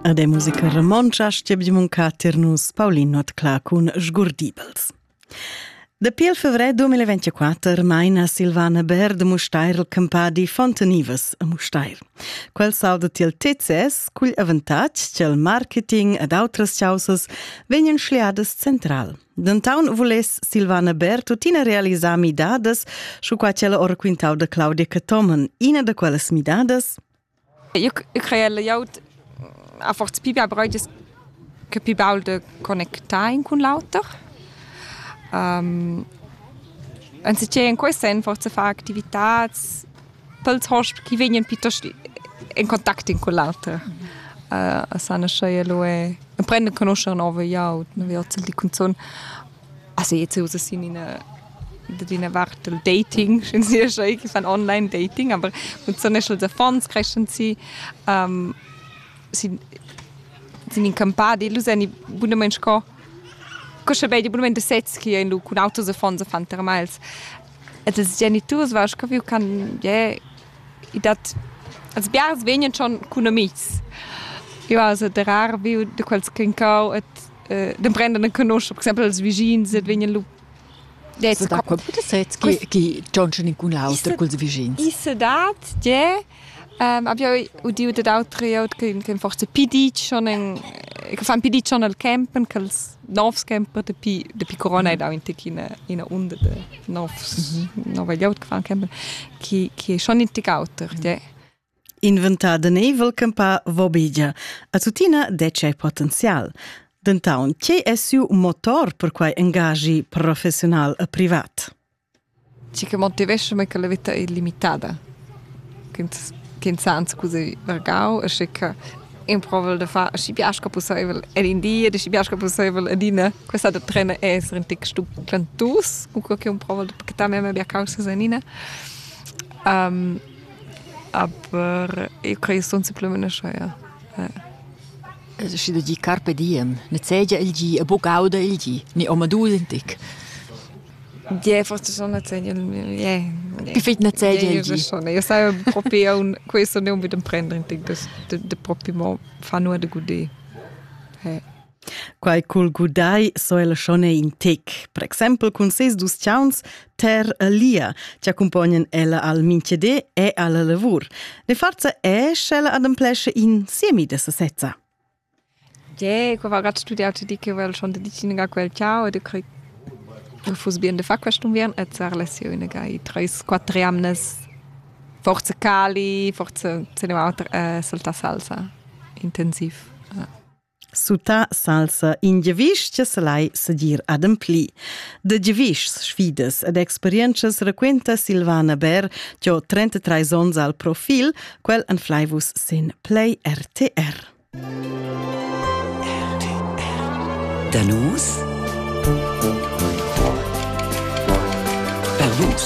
Ed è musica romontscha stiebdimunca tir nus Paulin Notcla cun Sgurdibels. Dapi il fevrer 2024 maina Silvana Baird Mustair il campadi Fontanivas a Mustair. Quel salda til TCS cugl avantatg ch'el marketing ed outras chausas vegnan schliadas central. Dentaun vuless Silvana Ber tuttina realisar midadas, sco qua quella ora quintau da Claudia Catomen, ina da quellas midadas. Eu, eu crei layout a forza pi bia breudes che pi baul de connectar in cun l'auter. Um, Anziché in quei sen forza far activitats dals host chi vegnan piuttost in contact in con l'auter. Uh, a sana schei lo e prende conoscere nove iaut ne vi ozzel di cunzon a se jetzt usa sin in da dina Warte Dating, schon sehr schön, ich fan online Dating, aber mit so National Funds crescen sie, ähm, sind, sind in campadi, lu sen i bunament sco, co sche bei di bunament sez chi ein lu cun autos e fonds fan termals. ed ils geniturs va caviu can je i dat als biars vegnan schon cun amis io ha se de rar viu de quels clincau et de prenden en conosc per exempel els vigins et vegnan lu Qui John schon incun auter culs vigins. I se dat je Um, abbiau udiu dad auter glieud che, che forse pi ditg schon en, che fan pi ditg schon al campen, che els novs camper dapi, dapi corona è dau in tec ina, ina unda de novs, mhm. nova glieud che fan campen, che, che è schon in tec auter. Mhm. Inventada neivel campa vobigia. A tutina dece è potenzial. Dentaun, che è siu motor per quai engagi professional e privat? Tgi che motivescha mei che la veta ei limitada, ch'ins ch'ins ha anscuzi vargau e sche che improvel da far aschi bia sco pusseivel en in di ed aschi bia sco pusseivel adina. Questa da trener ei esser in tec stuclentus, cunquei che improvel da pachettar memia bia caussas enina. aber io crei sun supplemenescha, ja. Schi da gi carpe diem, nezegia il gi e buc auda il gi, ni omadus in tec. Ie, forse schon nezegia ie. Perfect nezegia il di. schon. Io sai propi aunc questo ne unbedì prender in tec da propi mo far nuot da gudé. Quai cul gudai so el schon in tec, per exempel cun ses dus chauns ter lia, ci accompagnan ella al minchedé e alla lavur. Ne farza esce ella ademplesce in siemi de sasezza. Tgè, co va gat studià tü di che vel schon dedichina quel ciao ed eu craj ch'eu fuss bien da far quest'unviern e d'sar lesiun e gai treis quatter jamnas forza cali, forza se ne va auter e saltà salsa intensiv. Sutà salsa in giavüsch cha salai sadir adempli. Da giavüschs, sfidas ed experientschas raquinta Silvana Bär giò 33 ons al profil, quel anflaivus sin Play RTR. Da nus? Per vus?